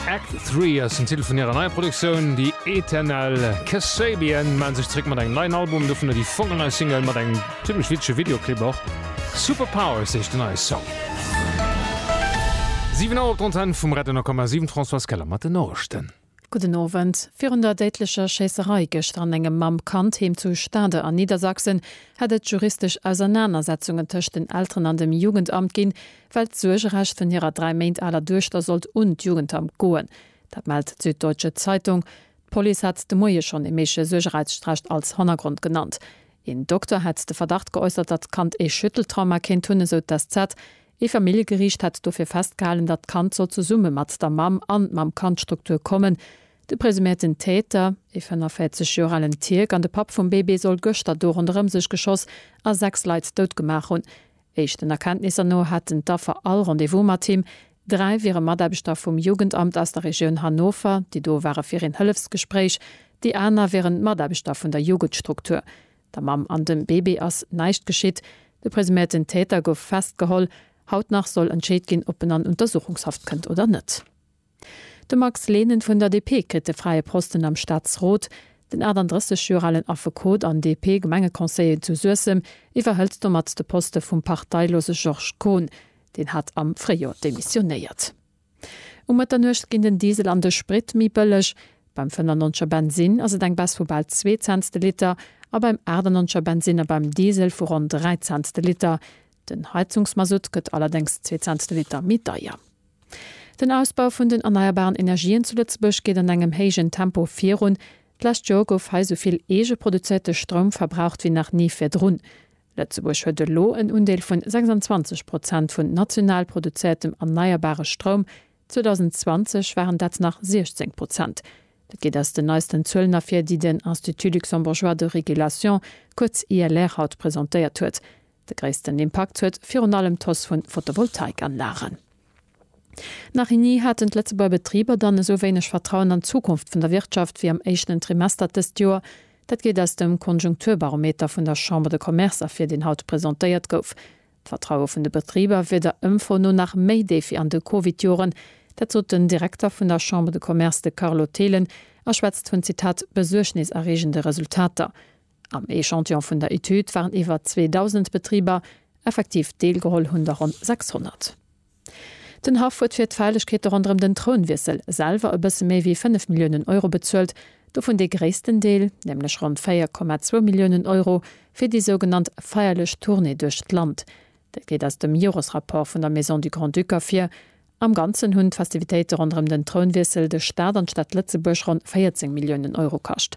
Act Three ass den Titel vun hirer neier Produktioun The Eternal Kasabian mellen sech zréck mat engem neien Album, dovunner déi fonkelnei Single mat engem zimmlech witzege Videoclip och. Super Powers heescht den neie Song. 7 Auer op der Antenn vum Radio 10,7, d'Françoise Keller mat den Noriichten. Gudden Owend. Virun der déidlecher Schéisserei gëschter an engem Mamm-Kand-Heem zu Stade an Niedersachsen hätt et juristesch Ausernanersetzungen tëscht den Elteren an dem Jugendamt ginn, well d'Suergerecht vun hirer dräi Méint aler Duechter sollt un d'Jugendamt goen. Dat mellt d'Süddeutsche Zeitung. D'Police hat de Moie schonn ee méigleche Suergereichtsstrecht als Hannergrond genannt. Een Dokter hätt de Verdacht geäussert, datt d'Kand ee Schütteltrauma kéint hunn, esou d'SZ. Ee Familljegeriicht hätt dofir festgehalen, datt d'Kand soll zesumme mat der Mamm an d' Mamm-Kand-Struktur kommen. De presumierten Täter, ee 45 Joer alen Tierk an de Papp vum Bébé soll gëschter do ronderëm sech geschoss a sechs Leit dout gemaach hunn. Éischten Erkenntnisser no haten d'Affer all Rendez-vous mat him. Dräi wiere Mataarbechter vum Jugendamt aus der Regioun Hannover, déi do ware fir een Hëllefsgespréich. Déi aner wieren Mataarbechter vun der Jugendstruktur. Der Mamm an dem Bébé ass näischt geschitt. De presuméierten Täter gouf festgeholl. Haut nach soll entscheet ginn, ob en an Untersuchungshaft kënnt oder net. De Max Lehnen vun der DP kritt de fräie Posten am Staatsrot. Den 38 Joer alen Affekot an DP-Gemengeconseiller zu Suessem iwwerhëlt domat de Poste vum parteilose Georges Kohn. Deen hat am Fréijor demissionéiert. Um Mëtternuecht ginn den Diesel an de Sprit méi bëlleg. Beim 95 er Bensinn ass et eng Baisse vu bal zwee Cents de Liter a beim 98 er Bensinn a beim Diesel vu ronn dräi Cents de Liter. Den Heizungsmasutt gëtt allerdéngs zwee Cents de Liter méi deier. Den Ausbau vun den erneierbaren Energien zu Lëtzebuerg geet an engem héijen Tempo virun. D'lescht Joer gouf hei esou vill eege produzéierte Stroum verbraucht wéi nach ni virdrun. Lëtzebuerg huet elo en Undeel vun 26 Prozent vun national produzéiertem erneierbare Stroum, 2020 waren dat nach 16 Prozent. Dat geet aus den neisten Zuelen ervir, déi den Institut luxembourgeois de régulation, kuerz ILR, haut presentéiert huet. De gréissten Impakt huet virun allem d'Hausse vu Photovoltaikanlagen. Nach ni haten d'Lëtzebuerger Betriber dann esou wéineg Vertrauen an d'Zukunft vun der Wirtschaft wéi am éischten Trimester dëst Joer. Dat geet aus dem Konjunkturbarometer vun der Chambre de Commerce ervir, deen haut presentéiert gouf. D'Vertraue vun de Betriber wier der Ëmfro no nach méi déif wéi an de Covid-Joren. Dat sot den Direkter vun der Chambre de Commerce, de Carlo Thelen, a schwätzt vun, Zitat, besuergniserreegende Resultater. Am Echantillon vun der Etüd waren iwwer 2.000 Betriber, effektiv deelgeholl hunn der ronn 600. Den Haff huet fir d'Feierlechkeete ronderëm den Trounwiessel selwer e bësse méi wéi 5 Milliounen Euro bezuelt, dovun dee gréissten Deel, nämlech ronn 4,2 Milliounen Euro, fir déi sougenannt feierlech Tournée duerch d'Land. Dat geet aus dem Joresrapport vun der Maison du Grand-Duc ervir. Am Ganzen hunn d'Festivitéite ronderëm den Trounwiessel de Staat an d'Stad Lëtzebuerg ronn 14 Milliounen Euro kascht.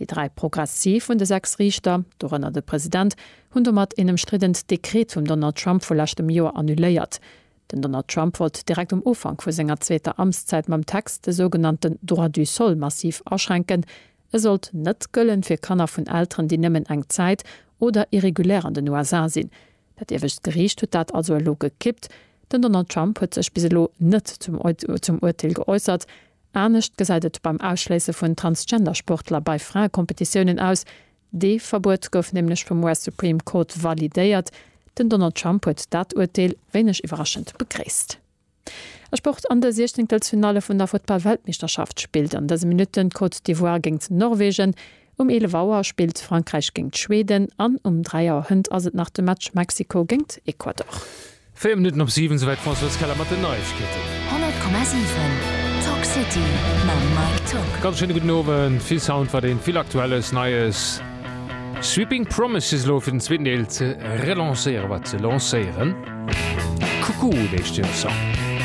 Déi dräi progressiv vun de sechs Riichter, dorënner de President, hunn domat een ëmstriddent Dekret vum Donald Trump vu leschtem Joer annuléiert. Den Donald Trump wollt direkt um Ufank vu senger zweeter Amtszäit mam Text de sougenannte Droit du sol massiv aschränken, e sollt net gëllen fir Kanner vun Elteren, déi nëmmen eng Zäit oder irregulär an den USA sinn. Dat iewescht Geriicht huet dat also elo gekippt. Den Donald Trump huet sech bis elo net zum Uerteel geäussert. Anescht gesäit et beim Ausschléisse vun Transgender-Sportler bei Fraekompetitiounen aus. Dee Verbuet gouf nämlech vum US-Supreme Court validéiert. Den Donald Trump huet dat Urteel wéineg iwwerraschend begréisst. A Sport, An de Siechzéngtelsfinalle vun der Futtball-Weltmeeschterschaft spillt an dëse Minutten d'Côte d'Ivoire géingt Norwegen. Um 11 Auer spillt Frankräich géingt Schweden an um 3 Auer Hënt ass et nach de Match Mexiko géingt Ecuador. 4 Minutten op 7, souwäit d'Françoise Keller mat den Neiegkeeten. 100,7 Talk City mam Mike Tuck. Ganz schéine gudden Owend. Vill Sound war deen, vill Aktuelles, Neies. Sweeping Promises elo fir den zweeten Deel ze relancéieren, wat ze lancéieren. Cuckoo heescht den Song.